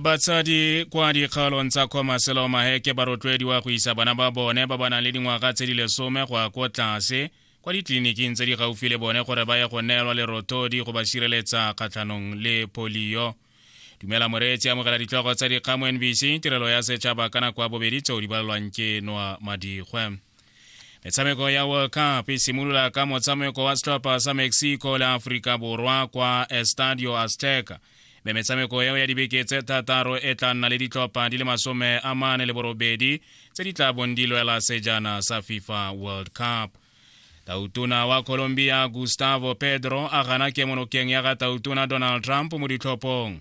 batsadi kwa dikgaolong tsa khomaselo maheke ba rotloediwa go isa bana ba bone ba ba nang le dingwaga tse di lesome go ya ko tlase kwa ditleliniking tse di gaufi le bone gore ba ye go neelwa lerothodi go ba sireletsa kgatlhanong le polio dumela moreetsi amogela ditlhogo tsa dikgamo nbc tirelo ya setšhaba ka nako ya bobedi tseo di balelwang ke noa madikgwe metshameko ya world cup e simolola ka motshameko wa setlhopha sa mexico le aforika borwa kwa estadio azteca mme metshameko eo ya dibeke tse thataro e tla nna le ditlhopha di le masome a mane le borobedi tse di tla bong di lwela sejana sa fifa world cup tautona wa colombia gustavo pedro a gana kemonokeng ya ga tautona donald trump mo ditlhophong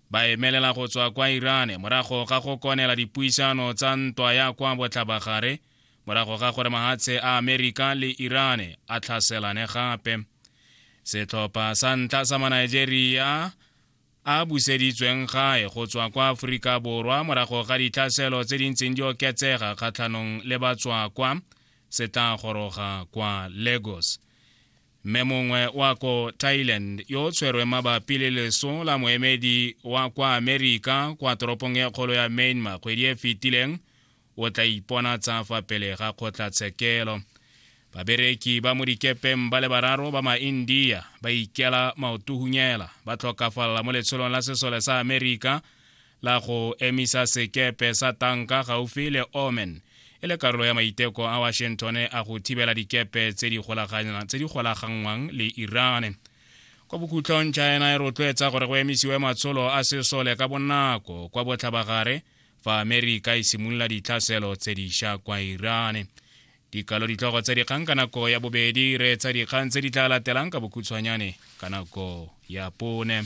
ba emelela go tswa kwa irane morago ga go konela dipuisano tsa ntwa ya kwa botlhabagare morago ga gore mahatshe a amerika le irane a tlhaselane gape setlhopha sa ntlha sa manigeria a buseditsweng gae go tswa kwa aforika borwa morago ga ditlhaselo tse di ntseng di oketsega kgatlhanong le batswakwa se tla goroga kwa lagos mme mongwe wa ko thailand yo o tshwerwe mabapi le leso la moemedi wa kwa amerika kwa toropong e kgolo ya myanmar kgwedi e fetileng o tla ipona tsa fa pele ga kgotlatshekelo babereki ba mo dikepeng ba le bararo ba maindia ba ikela maotuhunyela ba tlhokafalela mo letsholong la sesole sa amerika la go emisa sekepe sa tanka gaufi le omen e le karolo ya maiteko a washington a go thibela dikepe tse di golaganngwang le iran kwa bokhutlong china e rotloetsa gore go emisiwe matsholo a sesole ka bonako kwa botlhabagare fa amerika e simolola ditlhaselo tse diša kwa iran dikalo ditlhogo tsa dikgang ka nako ya bobedi re tsa dikgang tse di tla latelang ka bokhutshwanyane ka nako ya pone